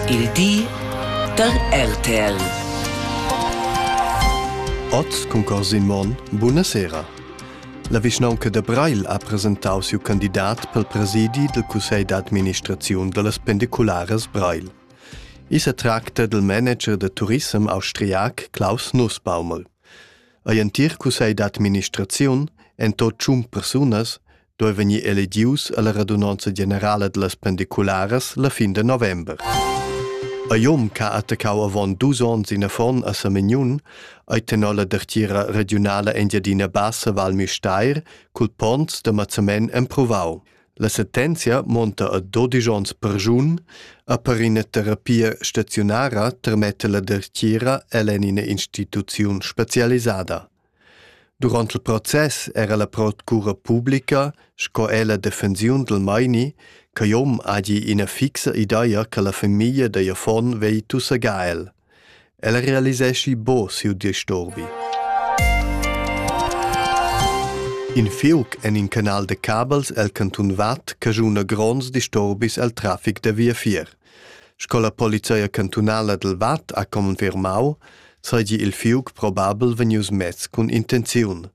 Il di da RTL. Oz cun Corsin Monn, buna sera. La vischnaunca da Breil ha presentau siu candidat pel presidi del cussegl d'administraziun dallas pendicularas Breil. I se tracta del manager de turissem austriac Klaus Nussbaumel. Ei entir cussegl d'administraziun, en tot tschun persunas, doi vegnir elegius alla radunanza generala dellas pendicularas la fin de november. A Jom ca attaccau avon dus ons in affon a Samignun, ei tenor la dertira regionala Engiadina Bassa Val Misteir cul ponns de Mazzamen emprovau. La sentenzia monta a 12 ons per giun, a per ina terapia staziunara termette la dertira ell'en ina instituziun specialisada. Durant il process era la procura publica sco er la defensiun dal meini ch'igl hom hagi ina fixa ideia che la famiglia da affon vegli tussegar el. El realiseschi bo siu disturbi. In fiuc en in canal de cabels el cantun Vad cajuna gronds disturbis el trafic da via fier. Sco la polizia cantunala dal Vad ha confermau, seigi il fiug probabel vegnius mess cun intenziun.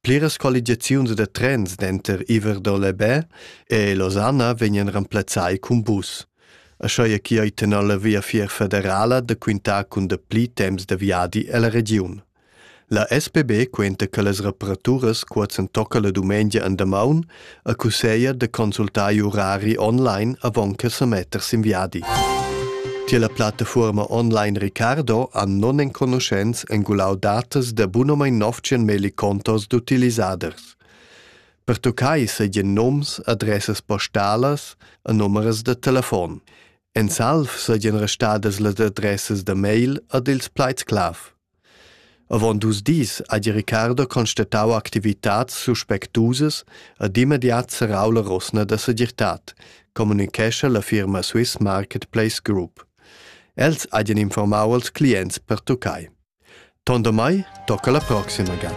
Pliras colligiaziuns da trens denter Iver-Dolebè e Losanna vegnan remplazzai cun bus. Aschia che ei tenor la Via Fier federala da quintar cun dapli temps da viadi ella regiun. La SPB quenta che las reparaturas qua s'entocca la dumengia en damaun e cusseglia da consultar i urari online avon che sa metter sin viadi. Tier la plattafuorma online Ricardo han non enconuschents engulau datas da bunomein 900 millicontos d'utilisaders. Per toccai seigien noms, adressas postalas e numeras da telefon. En salv seigien restadas las adressas da mail ad ils pleitsclav. Avon dus dis ha di Ricardo constatau activitads suspectusas ed immediat serrau la rosna da segirtad, communicescha la firma Swiss Marketplace Group. Els hagien informau als clients pertuccai. Tondamai tocca la proxima ga.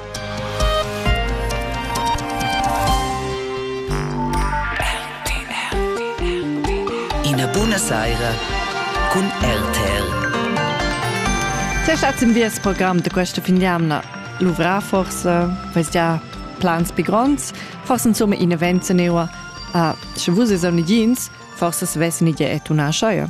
Ina buna saira cun RTL. Te schatz im Wies Programm de questa finiamna. Luvra forse, weiß ja, plans più gronds, forse insomma in event se neua. Ah, sche vus es on jeans, forse svessin ide et una aschaia.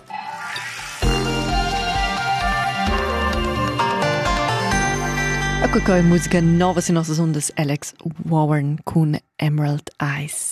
Ecco coi musica nova sui nostri ondas Alex Warren cun Emerald Eyes.